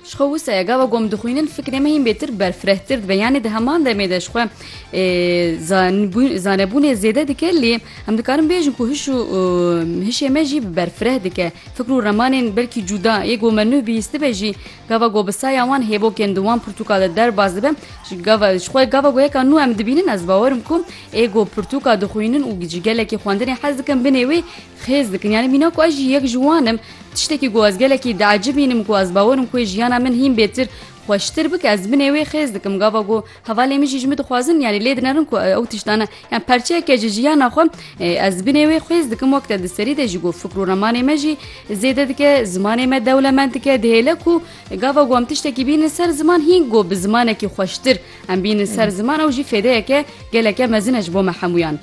Ji xwe wisa ye gava ku em dixwînin fikrê me hîn bêtir berfirehtir dibe yanê di heman demê de ji xwe zanebûnê zêde dike lê em dikarin bêjin ku hiş û hişê me jî berfireh dike fikr û remanên belkî cuda yê ku me nuh bihîstibe jî gava ku bi saya wan hêvokên di wan pirtûka de derbas dibe gava ji xwe gava ku yeka nû em dibînin ez bawerim ku ê ku pirtûka dixwînin û ji gelekî xwendinê hez dikin binê wê xêz dikin yanî mîna ku ez jî yek ji wan im tiştekî ku ez gelekî diecibînim ku ez bawer im ku jiyana min hîn bêtir xweştir bike ez bi nêwê xêz dikim gava ku hevalê min jî ji min dixwazin yanî lê dinerin ku ew tiştane yan perçeyeke ji jiyana xwe ez bi nêwê xêz dikim wek te di serî de jî ku fikr û remanê me jî zêde dike zimanê me dewlemend dike dihêle ku gava ku em tiştekî bînin ser ziman hîn ku bi zimanekî xweştir em bînin ser ziman ew jî fêdeyeke geleke mezin e ji bo me hemûyan.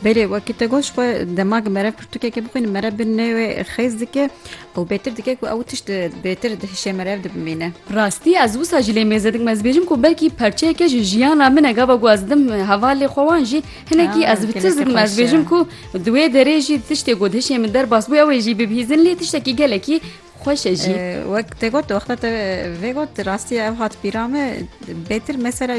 Belê wekî te got xwe dema ku merev pirtûkekê bixwîne merev bi nê wê xêz dike û bêtir dike ku ew tişt bêtir di hişê merev de bimîne. Rastî ez wisa jî lê mêze dikim ez dibêjim ku belkî parçeyeke ji jiyana min e gava ku ez didim hevalê xwe wan jî hinekî ez bi tirs dikim ez dibêjim ku di wê derê jî tiştê ku di hişê min derbas bû ew ê jî bibihîzin lê tiştekî gelekî Xweş e jî. Wek te got wexta te vê got rastiye ev hat pîra me bêtir mesela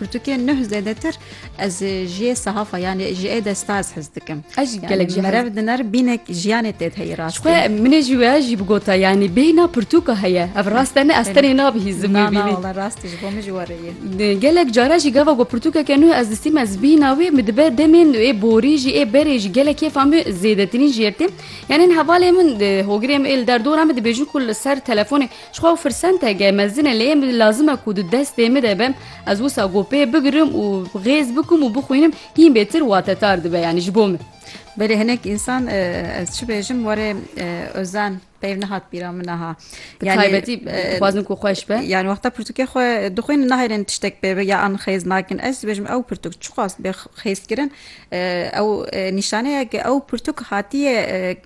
pirtûkê nuh zêdetir ez jiyê sehafa yanê jiyê de stars hez dikim ez jî gelek ji merev dinar bînek jiyanê tê heyî rast xwe minê jî wê jî bigota yanî bêhna pirtûka heye ev rast ne ez tenê nabihî zimî bînî rast ji bo min jî were ye gelek cara jî gava ku pirtûkeke nuh ez distîm ez bîna wê min dibe demên ê borî jî ê berê jî gelek kêfa min zêdetirîn jiyê tê Yanên hevalê min, hogirê min ê li der dora min dibêjin ku li ser telefonê ji xwe ew firsenteke mezin e lê yên min lazim e ku di destê min de be ez wisa ku pê bigirim û xêz bikim û bixwînim hîn bêtir watetar dibe yanî ji bo min. Belê hinek însan ez çi bêjim warê Ozan peyv nehat bîra min niha. Bi taybetî dixwazin ku xweş be. Yani wexta pirtûkê xwe dixwînin nahêlin tiştek pê be ya an xêz nakin. Ez dibêjim ew pirtûk çiqas bê xêzkirin Ew nîşaneya ke ew pirtûk hatiye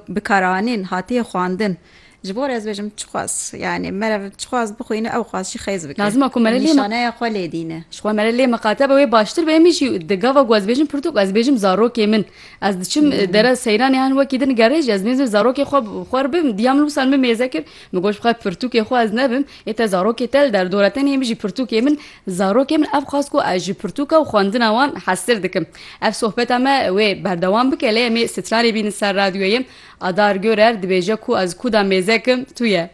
bikaranîn, hatiye xwandin. Ji bo re ez bêjim çixwaz yanî merev çixwaz bixwîne ew xwaz jî xêz bike. Lazim e ku mere lê nîşaneya xwe lê dîne. Ji xwe mere lê miqate be wê baştir be. Emî jî di gava ku ez bêjim pirtûk ez bêjim zarokê min. Ez diçim dere seyranê hen wekî din gerê jî ez nêzim zarokê xwe xwe re bibim. Diyam min wisa min mêze kir min goş bixwe pirtûkê xwe ez nebim. Ê te zarokê te li der dor e. Tenê emî jî pirtûkê min Zarokê min ev xwest ku ez ji pirtûka û xwendina wan hestir dikim. Ev sohbeta me wê berdewam bike lê em ê stranê bînin ser radyoyê. Adar Görer dibêje ku ez kuda mêzek im tu ye.